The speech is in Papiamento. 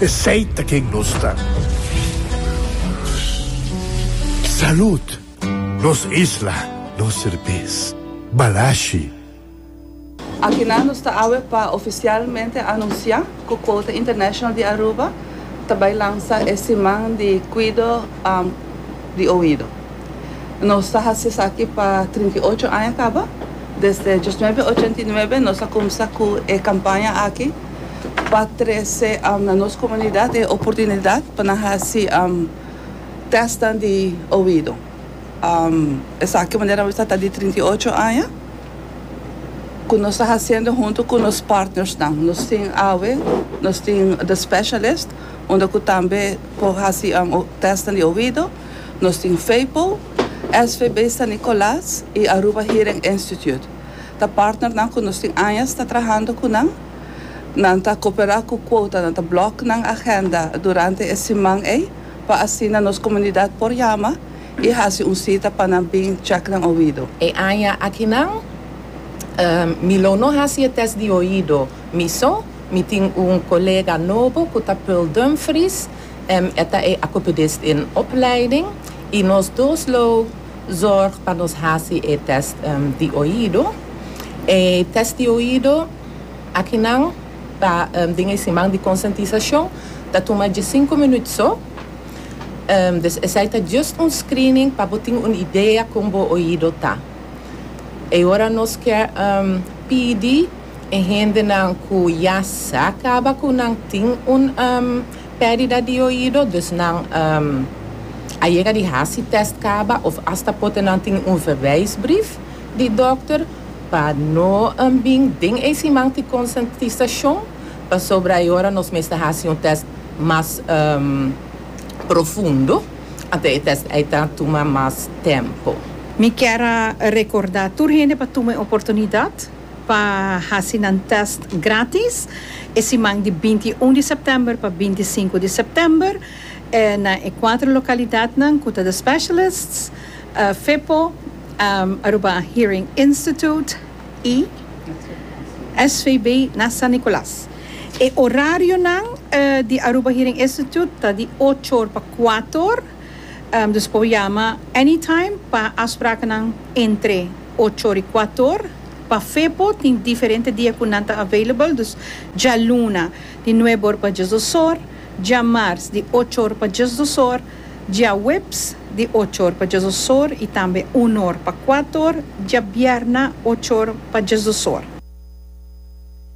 Esey ta ken nos ta. Salud! Nos isla, nos serbes. Balashi. Akinan nos ta awe pa oficialmente anuncia cu Quota International di Aruba ta bay lansa e siman di cuido di oido. Nos ta haci esaki pa trinta i ocho aña caba. Desde diosnuebe ochenta i nuebe nos a cuminsa cu e campaña aki. pa trese na nos komunidat e oportunidat pa nan hasi tèstnan di oido. Esaki manera mester ta di trinta i ocho aña ku nos ta hasiendo huntu ku nos partnersnan. Nos tin awe nos tin The Specialist unda ku tambe por hasi tèstnan di oido, nos tin FEIPO, SVB San Nicolas i Aruba Hearing Institute. Ta partnernan cu nos tin añas ta trahando cu nan. Nan ta coopera cu Quota, nan ta block nan agenda durante e siman ey pa asina nos comunidad por yama y haci un cita pa nan bin check nan oido. E aña akinan mi lo no haci e test di oido. Mi so, mi tin un colega nobo cu ta Pearl Dumfries, e ta e acopedist den opleiding y nos dos lo. zorg pa nos hasi e test di oido. E test di oido aki nan ta den e siman di konsientisashon, ta tuma diesinku minut so, dus esei ta just un screening pa bo tin un idea kon bo oido ta. E ora nos kier pidi e hendenan ku ya sa kaba ku nan tin un. Perdida di oido, dus nan a yega di hasi test kaba of asta pote nan tin un verwijsbrief di dokter pa no bin den e siman tin konsentisacion pasobra e ora nos mester hasi un test mas profundo anto e test ei ta tuma mas tempo. Mi kier a recorda tur hende pa tuma e oportunidad pa hasi nan tèst grátis e siman di binti i un di sèptèmber pa binti i sinku di sèptèmber na e kuater lokalidatnan ku ta The Specialists, FEPO, Aruba Hearing Institute i SVB na San Nicolas. E orarionan di Aruba Hearing Institute ta di ocho or pa kuater, dus por yama anytime pa afsprakennan entre. Ochori Kuator, Pa Fepo tin diferente dia ku nan ta available, dus djaluna di nuebe or pa djes dos or, djamars di ocho or pa djes dos or, djaweps di ocho or pa djes dos or i tambe un or pa kuator, djabierna ocho or pa djes dos or.